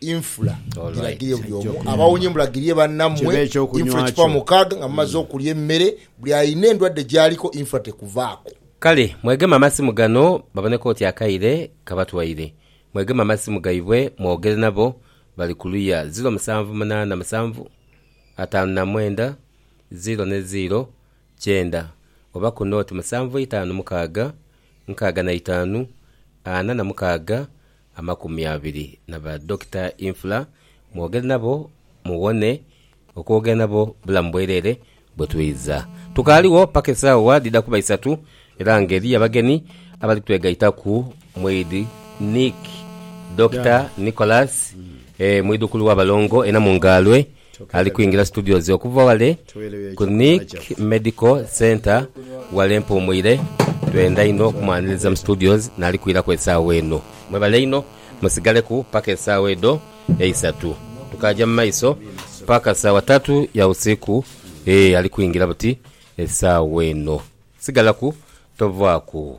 Infula. Giragirie buli omu abawonye mulagirie bannammwe infula ekikumi mukaaga nga mumaze okulya emmere. Buli alina endwadde gy'aliko infula tekuvaako. Kale mwegeme amasimu gano babone k'oti akaire kabatwaire. Mwegeme amasimu gaibwe mwogere nabo bali ku luya ziro musanvu munaana musanvu ataanu na mwenda ziro ne ziro kyenda oba ku nooti musanvu eitaanu mukaaga nkaaga na itaanu ana na mukaaga amakumi abiri na ba Dokita Infula mwogere nabo muwone okwogera nabo bulamu bwerere bwe twidha. Tukaaliwo paka esaawa dhidha kuba isatu era nga eriyo abagenhi abali twegaitaku mwidhi Nick, Dokita Nicholas, mwidhukulu wa balongo e Namungaalwe. Ali kwingira situdio ze okuva ghale ku Nick Medical Centre ghale Mpuumwire. Twenda inho okumwaniriza mu situdio naali kwiraku esaawa eno. Mwebale inho. Musigaleku paka esaawa edho eisatu. Tukaaja mu maiso paka saawa tatu ya usiku. Eeh ali kwingira buti esaawa eno. Sigalaku tovaaku.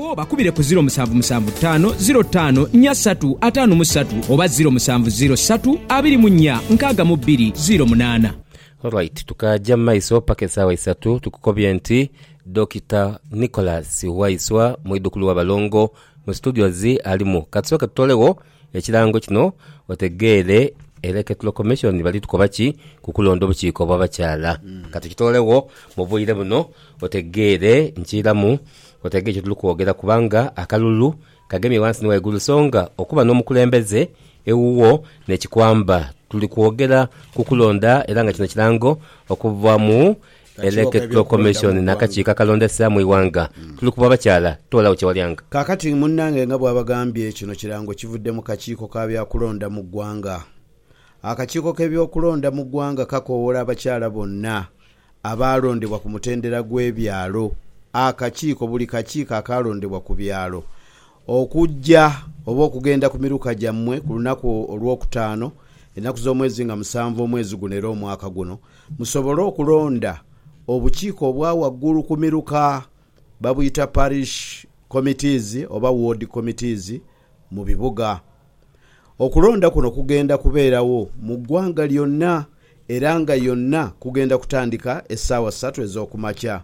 Bakubire ku ziro musanvu musanvu taano ziro taano nya satu ataanu mu satu oba ziro musanvu ziro satu abiri mu nya nkaaga mu bbiri ziro munaana. Alright tukaaja mu maiso paka esaawa isatu tukukobye nti Dokita Nicholas Waiswa mwidhukulu wa balongo mu studios alimu. Katusooke tutolegho Ekirango kino otegeere Electro Commission bali tukoba ki ku kulonda obukiiko obw'abakyala. Ka tukitoolegho mu bwire buno otegeere nkiiramu otegeere kye tuli kwogera kubanga akalulu kagemye ghansi ni ghaigulu songa okuba n'omukulembeze ewuwo n'ekikwamba. Tuli kwogera ku kulonda era nga kino kirango okuva mu Election Commission n'akakiiko akalondesa mu ighanga tuli ku bw'abakyala toolagho kye walyanga. Kaakati munnange nga bw'abagambye, kino kirango kivudde mu kakiiko ka bya kulonda mu ggwanga. Akakiiko k'ebyokulonda mu ggwanga kakowoola abakyala bonna abaalondebwa ku mutendera gw'ebyalo, akakiiko, buli kakiiko akaalondebwa ku byalo, Okujja oba okugenda ku miruka gyammwe ku lunaku Olwokutaano, enaku z'omwezi nga musanvu omwezi guno era omwaka guno, musobole okulonda obukiiko obwa waggulu ku miruka, babuyita Parish Committees oba Ward Committees mu bibuga. Okulonda kuno kugenda kubeerawo mu ggwanga lyonna era nga yonna kugenda kutandika essaawa ssatu ez'okumakya.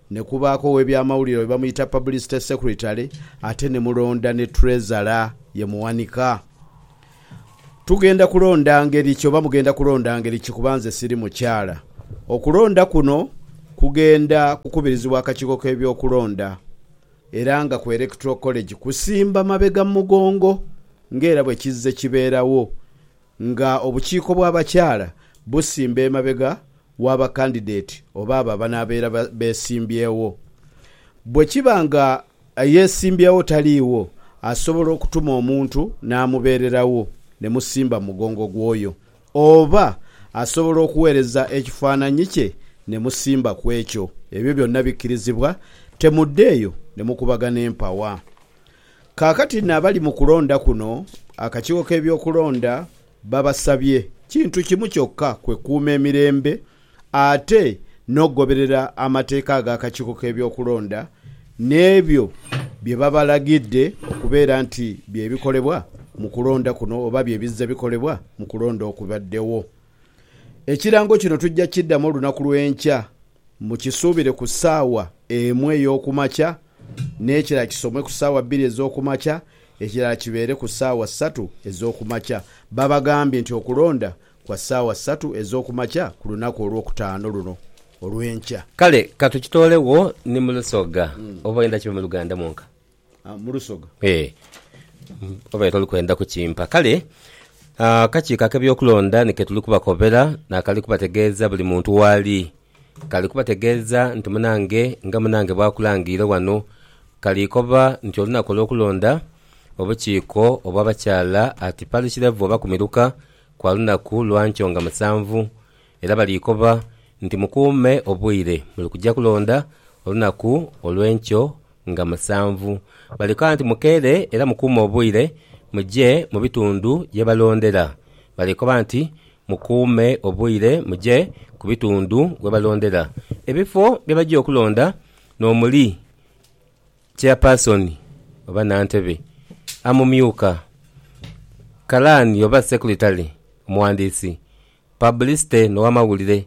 Ne kubaaku ow'ebyamawulire oyo bamuyita Publicity Secretary ate ni mulonda ni Treasurer ye muwanika. Tugenda kulonda ngeri ki oba mugenda kulonda ngeri ki kuba nze siri mukyala. Okulonda kuno kugenda kukubirizibwa akakiiko k'ebyokulonda era nga ku Electoral College kusimba mabega mu mugongo ng'era bwe kizze kibeerawo Nga obukiiko bw'abakyala busimba emabega wa bakandideti oba abo abanaabeera beesimbyewo. Bwe kiba nga eyeesimbyewo taliiwo, asobola okutuma omuntu n'amubeererawo ne musimba mu mugongo gw'oyo. Oba asobola okuweereza ekifaananyi kye ne musimba ku ekyo. Ebyo byonna bikkirizibwa. Temudda eyo ne mukubagana empawa. Kaakati n'abali mu kulonda kuno, akakiiko k'ebyokulonda babasabye kintu kimu kyokka, kwe kuuma emirembe ate n'okugoberera amateeka ag'akakiiko k'ebyokulonda n'ebyo bye babalagidde okubeera nti bye bikolebwa mu kulonda kuno oba bye bizze bikolebwa mu kulonda okubaddewo. Ekirango kino tujja kukiddamu olunaku lw'enkya. Mukisuubire ku saawa emu ey'oku makya, n'ekirala kisomwe ku saawa bbiri ez'oku makya, ekirala kibeere ku saawa satu ez'oku makya. Babagambye nti okulonda kwa saawa satu ez'oku makya ku lunaku olwokutaano luno olw'enkya. Kale ka tukitoolewoo ni mu Lusoga, oba oyenda kibe mu Luganda mwonka? Mu lusoga. Ee, obaire toli kwenda kukimpa. Kale akakiiko ak'eby'okulonda ni ke tuli kubakobera n'akali kubategeeza buli muntu w'ali. Kali kubategeeza nti munange nga munange bw'akulangiire wano, kali koba nti olunaku olw'okulonda obukiiko obw'abakyala at parish level oba ku miruka kwa lunaku lwa nkyo nga musanvu. Era baliikoba nti, Mukuume obwire, muli kuja kulonda olunaku olw'enkyo nga musanvu. Balikoba nti, Mukeere era mukuume obwire, muje mu bitundu ye balondera. Balikoba nti, Mukuume obwire, muje ku bitundu we balondera. Ebifo bye baja okulonda n'omuli Chairpersoni oba Nantebe, Amumyuka, Kalaani oba Sekulitale, Omuwandiisi, Publicity no wamawulire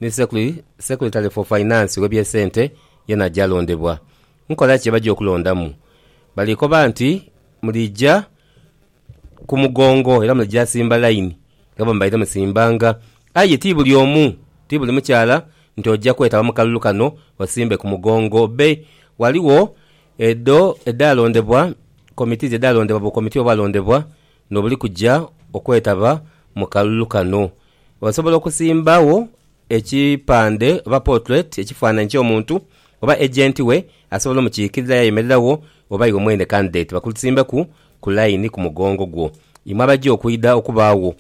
ni secre, secretary for finance webye sente yena aja alondebwa. Nkola ki ebaja okulondamu? Bali koba nti mulija ku mugongo era mulija simba line nga bwemubaire musimbanga. Aye ti buli omu, ti buli mukyala nti oja kwetaba mu kalulu kano osimbe ku mugongo. Be waliwo edho edha londebwa, committees edha londebwa bu committee obwa londebwa N'obuli kuja okwetaba mu kalulu kano, osobola okusimbagho ekipande oba potuleti, ekifaananhi ky'omuntu, oba ejenti we asobola omukiikirira yaayemereragho oba iwe mwene kandideti bakusimbeku ku layini ku mugongo gwo. Imwe abaja okwidha okubaagho.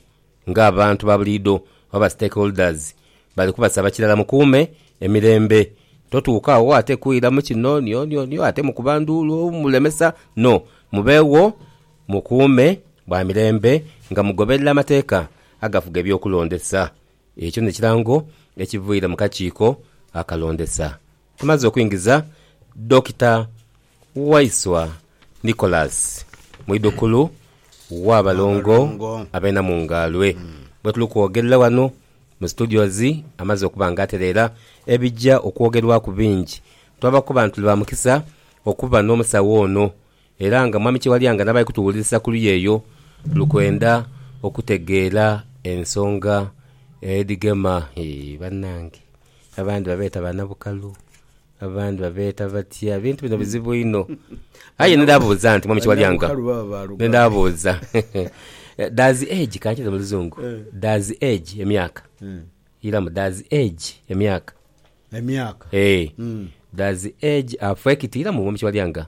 nga abantu ba buliidho oba stakeholders bali kubasaba kirala mukuume emirembe totuuka agho ate kwira mu kino nionionioo ate mukuba nduulu mulemesa no mubeegho mukuume bwa mirembe nga mugoberera amateeka agafuga eby'okulondesa ekyo n'ekirango ekiviire mu kakiiko akalondesa. Tumaze okuingiza Dokita. Waiswa Nicholas, mwidhukulu w'abalongo ab'e Namungaalwe gwe tuli kwogerera wano mu studios amaze okuba nga atereera ebija okwogerwaku bingi. Twaba kuba nti tuli ba mukisa okuba n'omusawo ono era nga Mwami Kyewalyanga n'abali kutuwulirisa ku luya eyo tuli kwenda okutegeera ensonga edhigema. Hee banange! Abandi babeeta banabukalu, abandi babeeta batya. Ebintu bino bizibu inho. Aye ndidhabuuza nti Mwami Kiwalyanga, ndidhabuuza does age, kankize mu luzungu, does age, emyaka, iramu, does age, emyaka, emyaka, eeh, does age affect, iramu Mwami Kiwalyanga?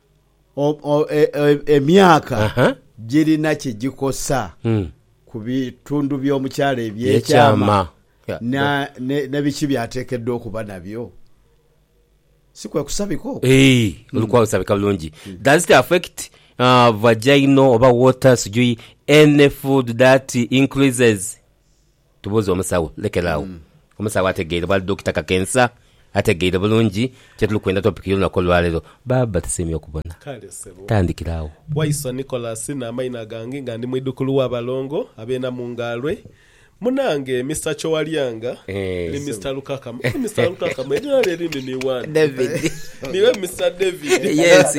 Emyaka girina kye gikosa ku bitundu by'omukyala eby'ekyama ni biki by'ateekeddwa okuba nabyo? Si kwe kusabika okwo? Eeh, oli kwasabika bulungi. Does it affect vaginal oba water sijui any food that increases? Tubuuze omusawo. Lekera agho. Omusawo ategeire bwali Dokita Kakensa. Ategeire bulungi kyetuli kwenda topic y'olunaku olwaleero. Baaba tusiimye okubona. Kale ssebo. Tandikira agho. Waiswa Nicholas n'amaina gange nga ndi mwidhukulu wa balongo ab'e Namungaalwe. Munange Mister Kyowalyanga ni Mister Lukakamu. Eeh Mister Lukakamu erina lyo erindi ni wani? David. Niwe Mister David. Yes.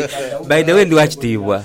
By the way ndi wakitiibwa.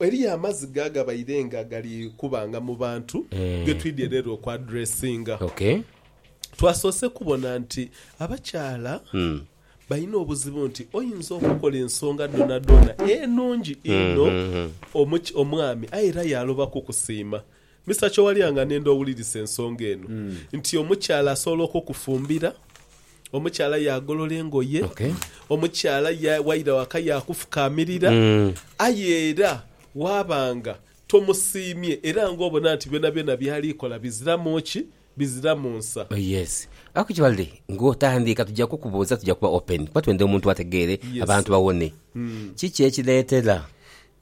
Eriyo amaziga agabaire nga gali kubanga mu bantu ge twidhye leero okuadressinga. Twasoose kubona nti abakyala balina obuzibu nti oyinza okukola ensonga dhoonadhoona enungi inho omwami aye era yaaloba kukusiima Mister Kyowarya nga nenda owulirise ensonga eno nti omukyala asobola okukufumbira, omukyala yagolola engoye, omukyala waira waka yakufukamirira aye era waba nga tomusiimye era nga obona nti byonabyona byali kola biziramu ki? Biziramu nsa. Oh yes. Actually nga otandiika tuja kukubuuza tuja kuba open kuba twenda omuntu ategeere abantu bawone. Kiki ekireetera.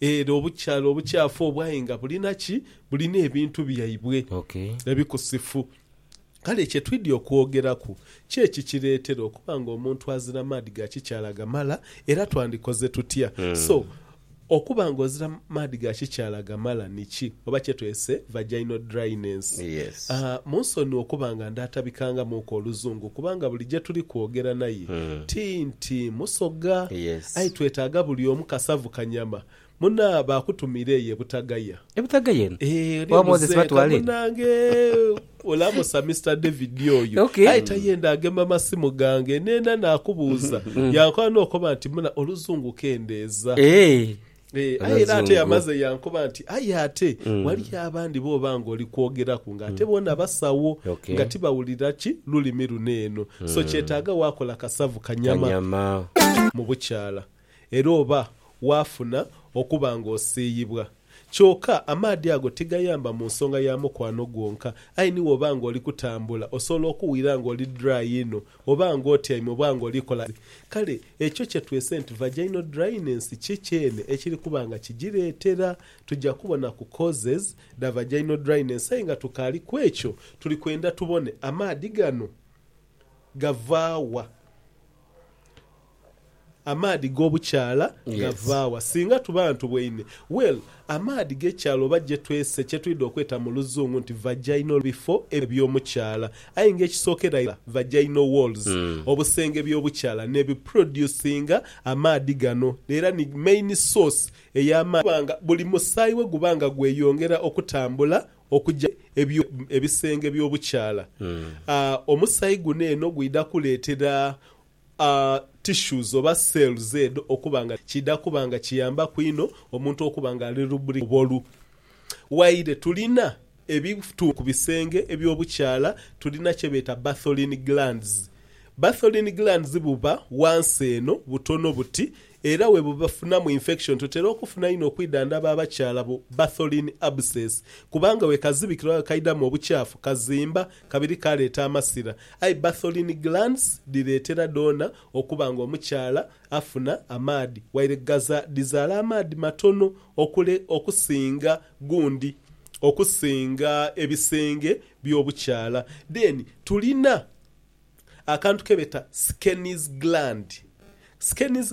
Era obukyalo obukyafu obwaye nga bulina ki? Bulina ebintu byaibwe ebikusifu. Kale kye twidhi okwogeraku ki ekikireetera okuba ng'omuntu azira maadhi ga kikyala gamala, era twandikoze tutya? So, okuba ng'ozira maadhi ga kikyala gamala ni ki? Oba kyetwese vaginal dryness. A Munsonue okuba nga ndaatabikanga muuka Oluzungu kubanga buli gye tuli kwogera naye ti nti Musoga. Yes. Aye twetaaga buli omu kasavu kanyama. Muna, baakutumiira eyo e Butagaya. E Butagaya eno? Eeh, oli Owa Moses omuzeeka batwala eno? munange! Olamusa Mister David oyo. Ok. Aye tayenda agema masimu gange. Neena naakubuuza, yankoba n'okoba nti, Muna, Oluzungu kendeeza. Eeh, Ee, aye era ate yamaze yankoba nti aye ate mm. waliyo abandi booba nga oli kwogeraku nga ate mm. boona basawo okay. nga tibawulira ki lulimi luno eno mm. so kyetaaga waakola kasavu kanyama, kanyama. mu bukyala era oba waafuna okuba nga osiiyibwa Kyoka amaadhi ago tigayamba mu nsonga ya mukwano gwonka aye ni woba nga oli kutambula osobola okuwira nga oli dry inho Oba nga otyaime oba nga oli kola ki, kale ekyo kye twese nti vaginal dryness ki kyene ekiri kuba nga kigireetera. Tuja kubona ku causes dha vaginal dryness aye nga tukaali ku ekyo, tuli kwenda tubone amaadhi gano gava wa. Amaadhi g'obukyala gava wa? Singa tuba ntuboine, well, amaadhi g'ekyala oba gye twese kye twidha okweta mu luzungu nti vaginal bifo eby'omukyala. Aye nga ekisookera ira vaginal walls, obusenge by'obukyala n'ebiproducinga amaadhi gano era ni main source ey'amaadhi kuba nga buli musaayi bwe guba nga gweyongera okutambula okuja mu ebisenge by'obukyala, omusaayi guno eno gwidha kuleetera. a tissues oba cells edho okuba nga kidha kuba nga kiyambaku inho omuntu okuba nga ali lubricated oba olu waire tulina ebitundu ku bisenge eby'obukyala tulina kyebeeta Bartholin glands. Bartholin glands buba wansi eno butono buti era webufunamu infection tutera okufuna inho okwidhandhaba abakyala bu Bartholin abscess kubanga wekazibikira oba wekaidhamu obukyafu kazimba Kabiri kaleeta amasira. Aye Bartholin glands dhireetera dhoona okuba nga omukyala afuna amaadhi waire ghaza dhizaala amaadhi matono okule okusinga gundi okusinga ebisenge by'obukyala. Then tulina akantu kebeta Skene's gland. Skene's.